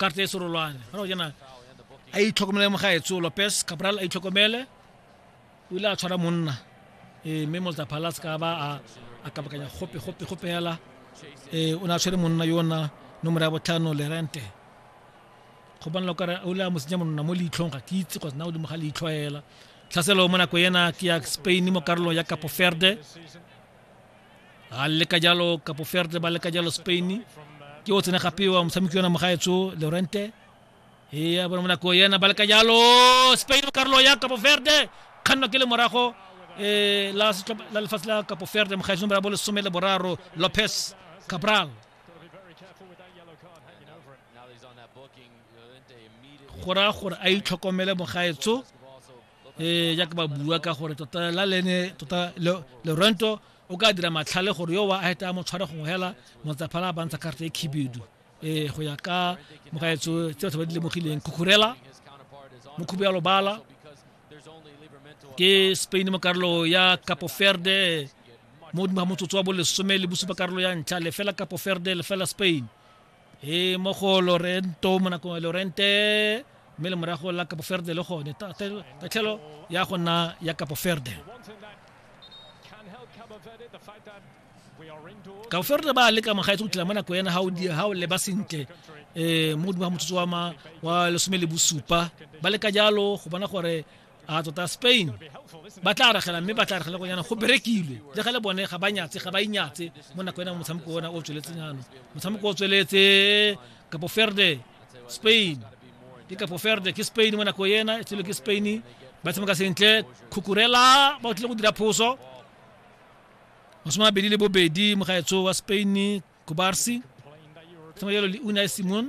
karta e serolwane gona go jana a itlhokomele mo ga etse lopes cabral a itlhokomele o ile a tshwara monna ee mme molta palace ka ba a kabakanya gope gope gope fela ee o ne a tshwere monna yona nomoro ya botlhano lerente go bonela kare o ile a mo senya monna mo leitlhong ga ke itse kgotsa na godimo ga leitlho fela tlhaselo mo nako ena ke ya spain mo karolong ya capo verde a leka jalo kapo ferde ba leka jalo spain ke o tsene gape wa motshameki yona mogaetso lorente ea bona monako yena ba leka jalo spain karolo ya kapo ferde kganno ke le morago um la lefatshe la kapo ferde mogaetso nomoro ya bo lesome le boraro lopez cabral go raya gore a itlhokomele mogaetso ee jaaka ba bua ka gore tota la lene tota lerento o ka dira matlhale gore yo wa a heta mo tshware gongwe hela motsaphala a bantsha karata e khibidu ee go ya ka mogaetso tse batho ba di lemogileng khukhurela mokhubu ya lobala ke spain mo karolo ya capo ferde mo godimo ga motsotso wa bolesome le bosupa karolo ya ntlha lefela capo ferde lefela spain e mo go lorento mo nakong lorente mme le morago la kapo ferde le gone tatlhelo ya go nna ya kapo ferde ka ferde ba leka mogaetse go tla mo nako ena ga o leba sentle um mo godimo ga motsotso wa lesome le bosupa ba leka jalo go bona gore a tota spain ba tla aragela mme ba tla aragela go yana go berekilwe le ga le bone ga ba nyatse ga ba inyatse mo nako ena motshameko ona o tsweletseng ano motshameko o tsweletse kapo ferde spain ke kapo ferde ke spain mo nako ena e tswele ke spain ba tshameka sentle khukurela ba o tlile go dira phoso masome mabedi le bobedi mogaetso wa spain kubarsi tshameka jalo le unai simon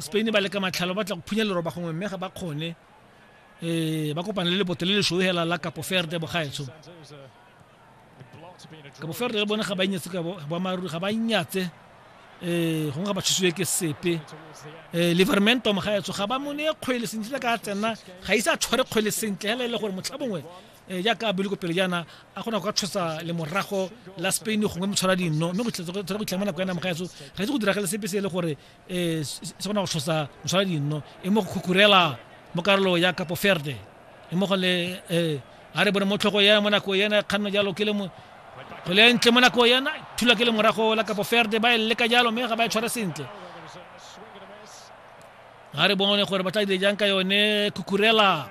spain ba leka matlhalo ba tla go phunya leroba gongwe mme ga ba kgone um ba kopane le leboto le lešoe hela la kapo ferde bogaetsho kapo ferde le bone ga ba inyetse ka boamaruri ga ba inyatse um gongwe ga ba thusiwe ke sepe um livermentom gaetsho ga ba mone kgwele sentle ka tsena ga ise a tshware kgwele sentle hela e le gore motlha bongwe Eh, jaaka a bile ko pele jaana a kgona go ka tshosa lemorago la spain gongwe motshwara dinno mme go tshwara go itlhama nako ya nama ga eso ga itse go diragale sepe se e le gore um se kgona go tshosa motshwara dinno e mo go khukurela mo karolo ya kapo ferde e mo go le um a re bone mo tlhogo ya mo nako yena kganno jalo ke le mo go le ntle mo nako yena thula ke lemorago la kapo ferde ba e leka jalo mme ga ba e tshwara sentle ga re bone gore ba tla dire jang ka yone khukurela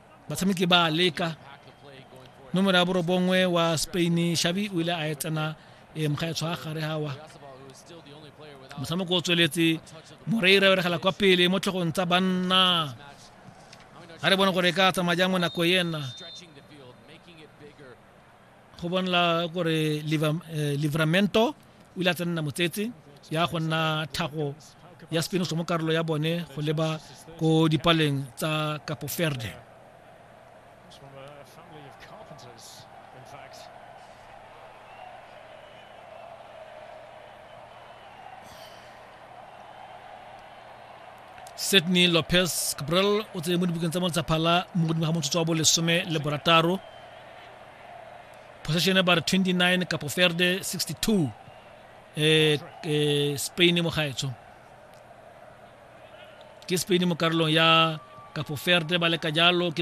batshameki ba leka nomoro ya borobongwe wa spain shabi o ile a e tsena e mga e tshwa gare gawa motshameko o tsweletse moreira o regela kwa pele mo tlhogong tsa banna ga re bone gore e ka tsamaya jang mo nako ena go bonala gore eh, livramento o ile a tsenna motsetse ya go nna thago ya spinoso mo karolo ya bone go leba ko dipaleng tsa capo verde sydney lopez cabral o tseye mo dibukeng tsa moltsaphala mo godimo ga motsotso wa bolesome le borataro possession ya bare 29 kapo ferde 62 eh, eh, spain mo gaetsho ke spain mo karolong ya kapo ferde ba leka jalo ke